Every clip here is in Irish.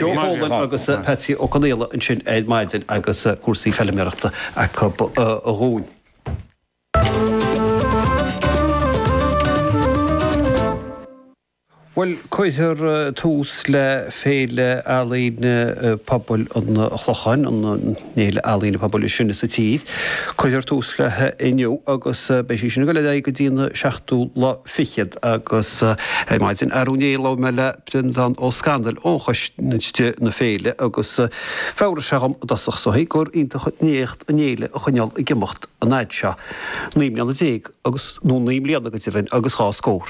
Joe Folan agus Patsy Ó Conaola ansin ar maidin agus cúrsaí feilméarachta acu dhúinn. Bhuel, cuirfear tús le Féile Ealaíon Pobail an Chlocháin, an fhéile ealaíne pobail is sine sa tír. Cuirfear tús léi inniu agus beidh sí sin ag dul ar aghaidh go dtí an seachtú lá fichead agus ar maidin, ar ndóigh, labhair mé le. Breandán Ó Scanaill ó Choiste na Féile agus d'fhreagair sé dhom i dtosach 's d'aontaigh gur iontach an éacht an fhéile a choinneáil ag imeacht an fhad seo, naoi mbliana déag agus, nó naoi mbliana go deimhin agus dhá scór.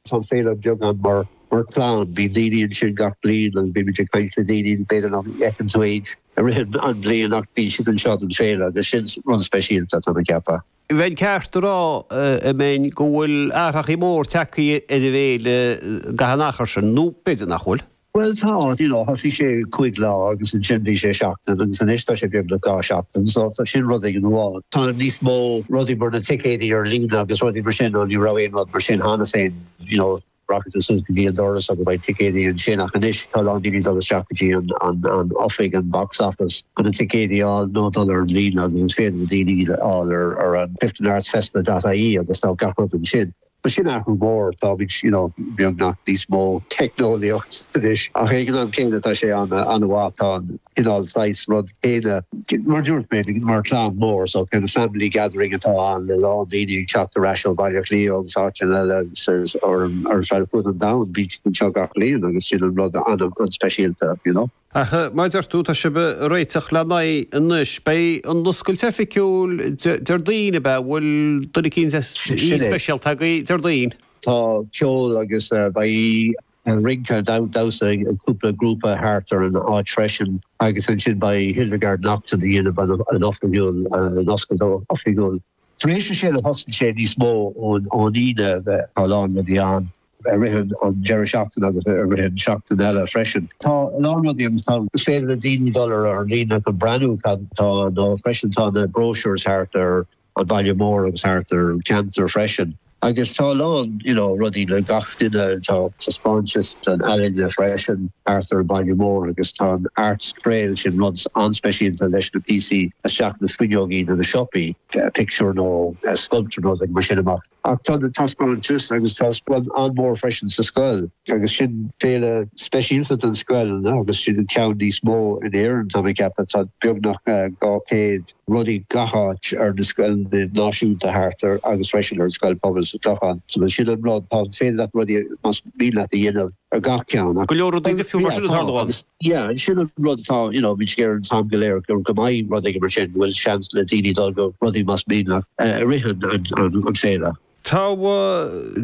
Tá an féile beagán mar chlann, bíonn daoine ansin gach bliain agus bímid ag caint le daoine, b'fhéidir nach bhfeiceann tú iad i rith an bhliain ach bíonn siad anseo don féile agus sin rud speisialta, tá mé ag ceapadh. Bheinn ceart a rá, a Bhreandáin, go bhfuil athrachaí móra tagthaí ar an bhféile san achar sin, nó b'fhéidir nach bhfuil? Bhuel, tá, you know, thosaigh sé cúig lá agus ansin bhí sé seachtain agus anois tá sé beagnach dhá sheachtain, so tá sin rud aon amháin. Tá níos mó rudaí mar na ticéidí ar líne agus rudaí mar sin, nó ní raibh aon rud mar sin cheana féin, you know. Rachaidh tú suas go dtí an doras agus beidh ticéidí ansin ach anois tá a lán daoine ag dul isteach go dtí an oifig, an box office, chun na ticéidí a fháil nó dul ar an líne agus is féidir le daoine iad a fháil ar an clifdenartsfestival.ie agus tá gach rud ansin. Bhuel, sin athrú mór, táimid, you know, beagnach níos mó teicneolaíocht anois ach ag an am céanna tá sé an-mhaith, tá an. cineál saghas rud céanna. Mar a dúirt mé, mar chlann mór, so kind of family gathering atá ann le a lán daoine ag teacht ar ais ó Bhaile Átha Cliath agus áiteanna eile agus ar fud an domhain, bíonn siad anseo gach bliain agus sin an rud an-speisialta, you know. Ach mar a deir tú, tá sibh ag réiteach lena aghaidh anois, beidh an oscailt oifigiúil Déardaoin, ab ea? Bhfuil duine eicínt speisialta agaibh Déardaoin? Tá ceol agus beidh. Rince, damhsa ag cúpla grúpa thart ar an áit freisin agus ansin beidh Hildegarde Naughton ag déanamh an oifigiúil, an oscailt oifigiúil. Tar éis a sé a thosaíonn sé níos mó ón Aoine, tá a lán rudaí ann i rith an deireadh seachtaine agus i rith an seachtain eile freisin. Tá a lán rudaí ann, is féidir le daoine dul ar líne chun breathnú cad tá ann freisin, tá na brochures thart ar an baile mór agus thart ar an cheantar freisin agus tá a lán you know rudaí le gach duine, tá taispeántais den ealaín freisin thart ar an baile mór agus tá an Arts Trail, sin rud an-speisialta leis na píosaí isteach na fuinneogaí de na siopaí, pictiúr nó sculpture nó rud mar sin amach. Ach tá na taispeántais agus taispeáint an-mhór freisin sa scoil. Agus sin féile speisialta don scoil agus sin an ceann níos mó in Éirinn tá mé ag ceapadh, tá beagnach 200 rudaí gach áit ar na scoileanna náisiúnta thart ar agus freisin ar an scoil pobail sa Clochán. So bhuel sin an rud, tá féidir leat rudaí is mian leat a dhéanamh. ar gach ceann acu. Go leor rudaí difriúil mar sin ag tarlú ann. Yeah, and sin an rud atá, you know, bhí sé géar an t-am go léir gur go mbeidh rud éigin mar sin, go bhfuil seans le daoine dul go rudaí más mian leat i rith an féile. Tá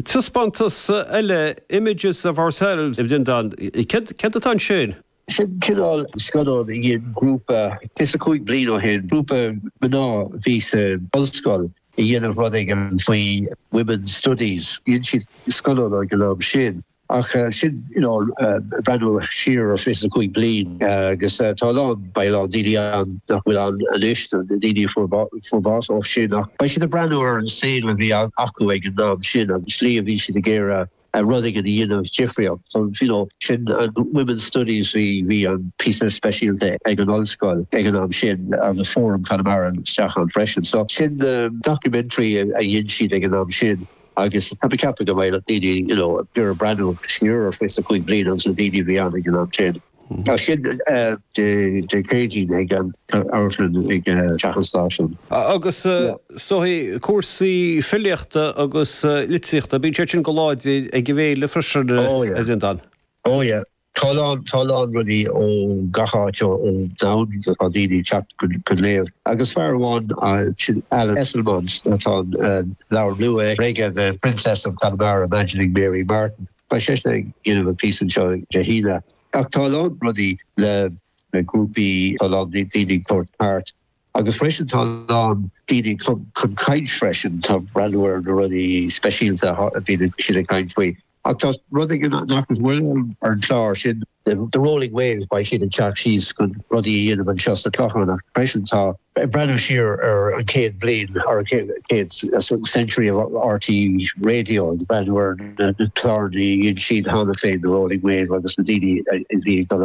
taispeántas eile, Images of Ourselves, a Bhreandáin. Céard atá ansin? Sin cineál scannáin a dhein grúpa fiche is a cúig bliain ó shin, grúpa mná a bhí sa ollscoil ag déanamh rud éigin faoi women's studies. Dhein siad scannán ag an am sin ach sin you know breathnú siar ar fiche is a cúig bliain agus tá a lán, beidh a lán daoine ann nach bhfuil ann anois, na daoine a fuair fuair bás ó shin ach beidh siad ag breathnú ar an saol a bhí acu ag an am sin agus an slí a bhí siad ag iarraidh rud éigin a dhéanamh difríocht. So you know sin an Women's Studies bhí, bhí an píosa speisialta ag an ollscoil ag an am sin agus Fóram Chonamara isteach ann freisin. So sin na documentary a dhein siad ag an am sin agus tá mé ag ceapadh go mbeidh daoine you know, ag iarraidh breathnú siar ar fiche is a cúig bhliain agus na daoine a bhí ann ag an am sin. Tá sin Dé Céadaoin ag an amharclann ag Teach an Stáisiúin. Agus cúrsaí filíochta agus litríochta, bíonn siad sin an-láidir ag an bhféile freisin, a Bhreandáin? Ó yeah, tá a lán rudaí ó gach áit ón domhan, tá daoine ag teacht chun léamh agus fear amháin, sin Alan Esslemont, tá an leabhar nua aige, The Princess of Connemara, Imagining Mary Martin. Beidh seisean ag déanamh an phíosa anseo Dé hAoine. Ach tá a lán rudaí le na grúpaí, tá a lán daoine ag tabhairt páirt agus freisin tá a lán daoine ag chun chun caint freisin, tá breathnú ar na rudaí speisialta a bhíonn siad ag caint faoi. Ach tá rud éigin nach bhfuil ar an chlár, sin, The Rolling Wave, beidh siad ag teacht síos chun rudaí a dhéanamh anseo sa Clochán freisin. Tá. Ag breathnú siar ar an chéad bliain, or an chéad century of RTÉ Radio, ag breathnú ar na cláranna a dhein siad cheana féin, The Rolling Wave agus na daoine a bhí ag dul amach.